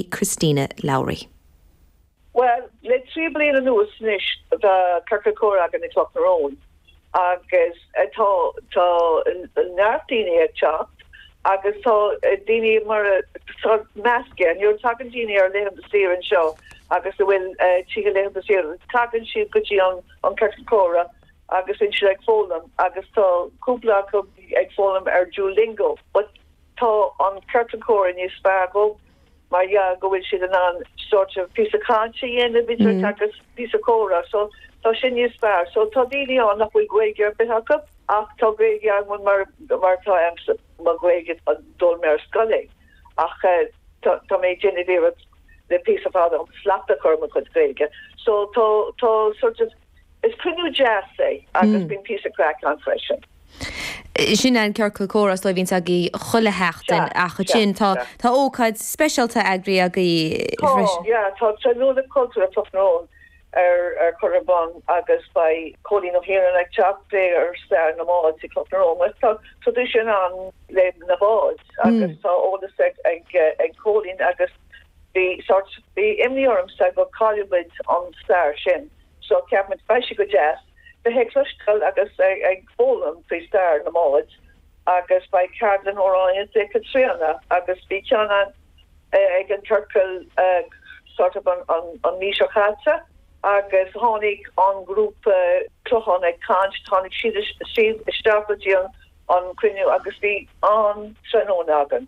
Christina Lowry. Bhuel, le trí bliana anuas anois tá Ciorcal Comhrá againn i gCloch na Rón agus tá neart daoine ag teacht agus tá daoine mar atá measctha, you know, tagann daoine ar laethanta saoire anseo agus a bhfuil tithe laethanta saoire, tagann siad go dtí an Ciorcal Comhrá agus bíonn siad ag foghlaim agus tá cúpla acu ag foghlaim ar Duolingo but, Tá an Ciorcal Comhrá níos fearr dóibh mar gheall go bhfuil siad in ann sort of píosa cainte a dhéanamh agus píosa comhrá so tá sin níos fearr. So tá daoine ann nach bhfuil Gaeilge ar bith acu ach tá Gaeilge acu mar mar atá agamsa mo Ghaeilge d'fhoghlaim mé ar scoil é ach tá tá mé ag déanamh iarracht le píosa fada slacht a chur ar mo chuid Gaeilge so tá tá sort of Is cruinniú deas é agus bíonn píosa craic ann freisin. Sin é an ciorcal comhrá is dóigh a bhíonns agaibh chuile sheachtain ach ansin tá ócáid speisialta eagraithe agaibh freisin. Tá, tá tráthnóna cultúrtha tráthnóna á chur ar bun agus beidh Cóilín Ó hIarnáin ag teacht ag plé ar stair na mbád sa Chloch na Rón. Tá traidisiún ann le na báid agus tá eolas ag Cóilín agus. Bhí sórt, bhí imní ormsa go gcaillfeadh muid an stair sin so cheap muid beidh sé go deas bheith ag cloisteáil agus ag foghlaim faoi stair na mbád agus beidh ceardlann amhráin le Caitríona agus bhí ceann ann ag an ciorcal sórt of an mhí seo caite agus tháinig an grúpa Clochán ag caint, tháinig siad siad isteach go dtí an cruinniú agus bhí an-tráthnóna againn.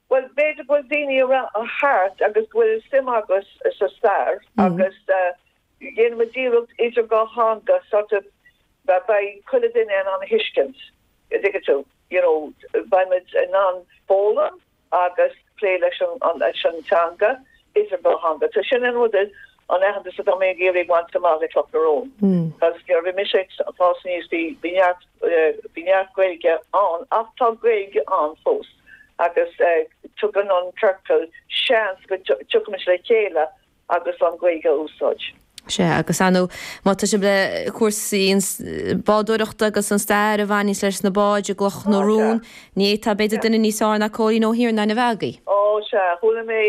Bhuel, b'fhéidir go bhfuil daoine thart agus go bhfuil suim acu sa stair agus dhéanfaimid iarracht idir dhá theanga sort of beidh chuile duine in ann a thuiscint, a' dtuigeann tú, you know, beimid in ann foghlaim agus plé leis an teanga idir dhá theanga. So sin an rud, an aitheantas atá mé ag iarraidh a bhaint amach le Cloch na Rón. Because nuair a bhí mise ag fás aníos bhí neart, bhí neart Gaeilge ann ach tá Gaeilge ann fós. agus tugann an ciorcal seans go dtiocfaidh muid le chéile agus an Ghaeilge a úsáid. Sea, agus ar ndóigh, maidir le cúrsaí bádóireachta agus an stair a bhaineas leis na báid i gCloch na Rón, ní fhéadfadh, b'fhéidir, duine níos fearr ná Cóilín Ó hIarnáin a bheith agaibh. Ó, sea, chuala mé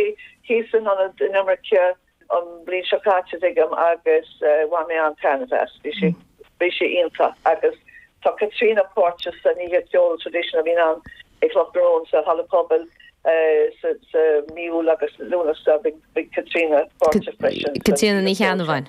thíos in Ionad Inimirce an bhliain seo caite agus bhain mé an-taitneamh as. Bhí sé bhí sé iontach agus tá Caitríona páirteach san oíche cheoil traditional a bhíonn i gCloch na Rón sa halla pobail sa mí Iúil agus Lúnasa bhí Caitríona páirteach freisin. Caitríona Ní Cheannabháin.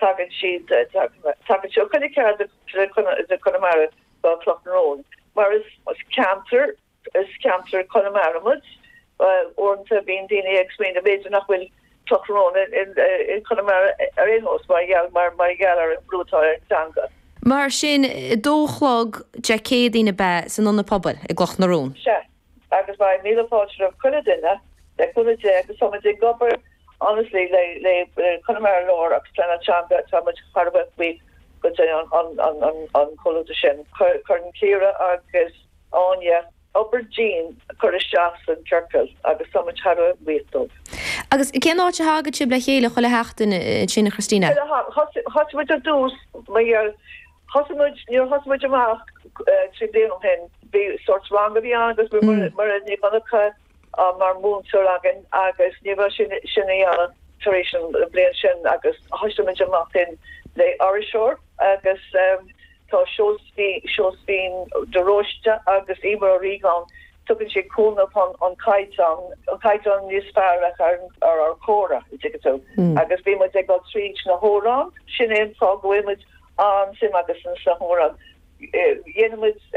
Tagann siad chun a chéad de Chonamara tá Cloch na Rón mar is ceantar is ceantar Conamara muid. Uaireanta bíonn daoine ag smaoineamh b'fhéidir nach bhfuil Cloch na Rón i Conamara ar aon nós mar gheall mar gheall ar an brú atá ar an teanga. Mar sin, a dó a chlog Dé Céadaoin ab ea san Ionad Pobail i gCloch na Rón? Sea. Agus beidh míle fáilte roimh chuile duine, le cúnamh Dé, agus tá muid ag obair anois le le le Conamara Láir agus Pleanáil Teanga, tá muid thar a bheith buíoch go deo an an an an an comhluadar sin. Chuir cuireann Ciara agus Áine obair dian cur isteach san ciorcal agus tá muid thar a bheith buíoch dóibh. Agus cén áit a thagann sibh le chéile chuile sheachtain ansin a Christina? Bhuel, thosaigh muid ar dtús mar gheall Thosaigh muid, nuair a thosaigh muid amach trí bliana ó shin, bhí sórt rang a bhí ann agus bhí mar a bhí Monica mar mhúinteoir againn agus ní raibh sí in ann sin a dhéanamh tar éis an bliain sin agus thosaigh muid amach féin le aistreoir agus tá Seosaimhín de Róiste agus Emer Ó Riagáin Tugann sé cúnamh chun an caighdeán, an caighdeán níos fearr a chur ar ár gcomhrá an dtuigeann tú. Agus bíonn muid ag dul tríd na hamhráin, sin é an fáth go bhfuil muid an-suim agus an sna hamhráin. Déanann muid.